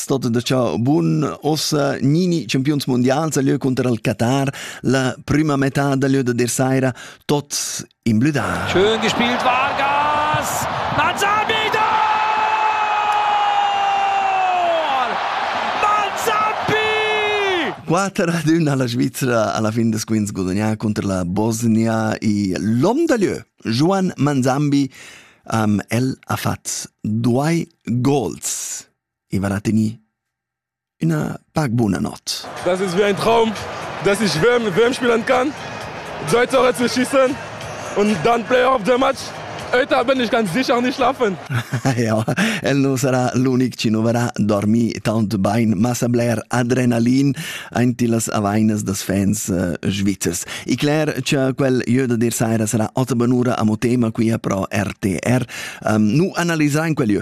stato da ciò buon ossa Nini campions mondials a lieu contro il Qatar la prima metà da lieu da der Saira tot in blüda Schön gespielt Vargas Manzar wieder Quater ad una la Svizzera alla fin des quints gudagnà contro la Bosnia e l'om da lieu Juan Manzambi am el ha fat due goals e vala tegnì üna pac buna not. Das ist wie ein Traum, dass ich WM, WM spielen kann, zwei Tore zu schießen und dann Player of the Match. Heute bin ich ganz sicher nicht schlafen. ja, el non sarà l'unic ci noverà dormi tant bain, massa bler adrenalin aint las avainas das fans uh, svizzers. I Claire, c'è quel jeu da dir saira sarà ota benura a mo tema qui a pro RTR. Um, nu analizzare in quel jeu.